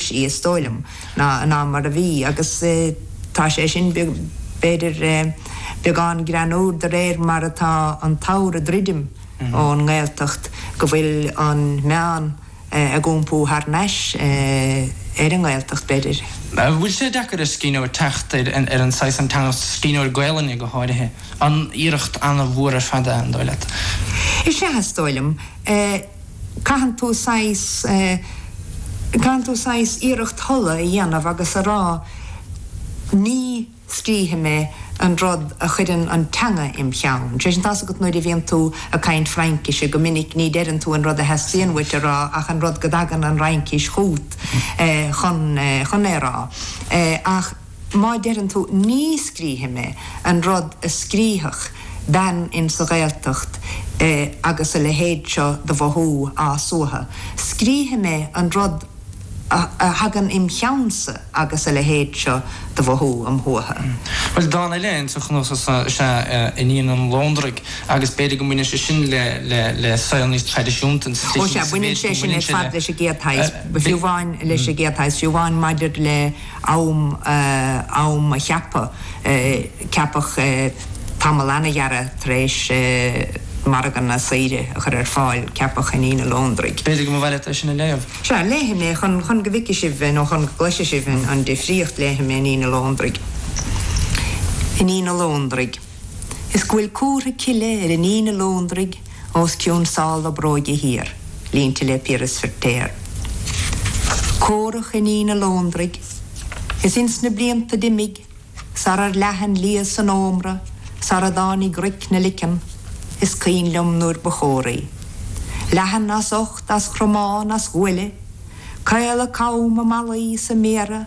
sí, is dóigh liom, ná mar a bhí agus tá sé sin, b'fhéidir, beagán greannúr de réir mar atá an t-abhar ag druidim ón nGaeltacht, go bhfuil an meán ag iompú thar nais ar an nGaeltacht, b'fhéidir. An bhfuil sé deacair ar scríbhneoir teacht ar an saghas, an teanga, scríbhneoir Gaelainne go háirithe, an iarracht an-mhór ar fad é, an dóigh leat? Is ea, is dóigh liom. Caitheann tú saghas, eh, caitheann tú saghas iarracht thola a dhéanamh agus a rá ní scríobhfaidh mé an rud a chuireann an teanga im' cheann. Sé sin, tá's agat nuair a bhíonn tú ag caint Fraincise, go minic ní deireann tú an rud a theastaíonn uait a rá ach an rud go dtagann an Fhraincis chút, eh, chun, eh, chun é a rá. Eh, ach. Má deireann tú ní scríobhfaidh mé an rud a scríobhfadh bean in sa Ghaeltacht agus a leithéid seo de mhothú á suathadh, scríobhfaidh mé an rud a thagann im cheannsa agus a leithéid seo de mhothú am shuathadh. Bhuel, dán eile in sa chnuasach seo is ea Iníon an Lóndraigh agus b'fhéidir go mbaineann sé sin le saol níos traidisiúnta in sa Ó sea, baineann sé sin ar fad leis an gcéad shaghas, fiú amháin leis an gcéad shaghas, fiú amháin maidir le. am, am a cheaptha, ceapadh tamall an-ghearra tar éis Margadh na Saoire a chur ar fáil, ceapadh Iníon an Lóndraigh. B'fhéidir go mba mhaith leat é sin a léamh. Sea, léifidh mé, chun, chun go bhfeicfidh sibh, nó chun go gcloisfidh sibh an difríocht, léifidh mé Iníon an Lóndraigh. Iníon an Lóndraigh. is go bhfuil comhartha cille ar Iníon an Lóndraigh os cionn sál a bróige thiar, línte le Piaras Feiritéar. Córach Iníon an Lóndraigh, is ins na blianta d'imigh, sarar leath an liath san ómra, sara dtáinig roic 'na leiceann, is cuimhin liom nuair ba chóraí. Leathan as ucht, as chromán, as ghuaille, caol a com, a malaí, is a méara,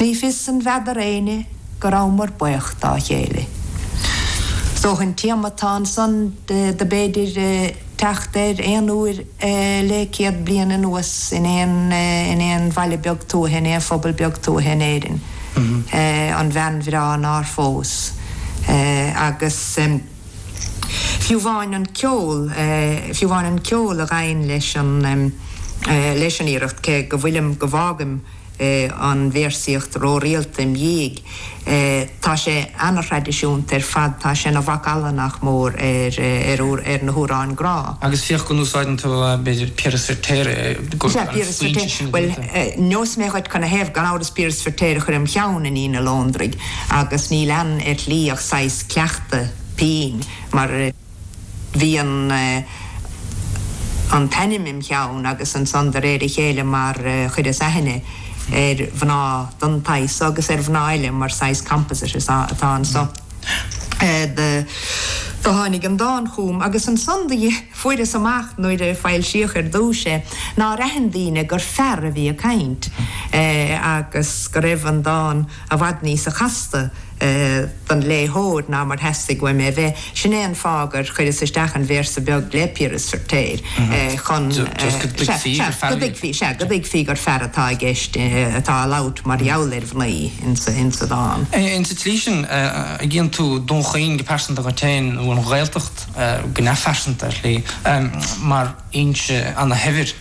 Ní fios an bhfeadair éinne go rabhamar baoch dá chéile. Is dócha an téama atá ansan do b'fhéidir teacht air aon uair le céad bliain anuas in aon in aon bhaile beag tuaithe, in aon phobal beag tuaithe in Éirinn, an bhean bhreá nár phós. Agus fiú amháin an ceol, fiú amháin an ceol a ghabhann leis an leis an iarracht, cé go bhfuilim, go bhfágaim, an véarsaíocht rórialta im dhiaidh. Tá sé ana-thraidisiúnta ar fad, tá sé ina mhacalla, nach mór, ar na hamhráin grá. Agus féach go n-úsáideann tú, b'fhéidir, Piaras Feiritéar i gcónaí mar an foinse sin a bhíonn tú. Bhuel, neosfaidh mé dhuit cad 'na thaobh. Gan amhras Piaras Feiritéar a chuir im cheann Iníon an Lóndraigh agus níl ann ar shlí ach saghas cleachtadh pinn mar, bhí an an t-ainm im cheann agus ansan de réir a chéile mar chuireas aithne ar mhná den tsaghas so agus ar mhná eile mar saghas composite is ea atá anso do do tháinig an dán chugam agus ansan do fuaireas amach nuair a foilsíodh ar dtúis é nár aithin daoine gur fear a bhí ag caint agus go raibh an dán i bhfad níosa chasta. don léitheoir ná mar theastaigh uaim é a bheith, sin é an fáth gur chuireas isteach an véarsa beag le Piaras Feiritéar chun, sea, go dtuigfí gur fear atá i gceist, atá á labhairt mar gheall ar mhnaoi insa dán. Insa tslí sin, chíonn tú Dún Chaoin go pearsanta agat féin, nó an Ghaeltacht go neamhphearsanta ar shlí, mar fhoinse an-shaibhir.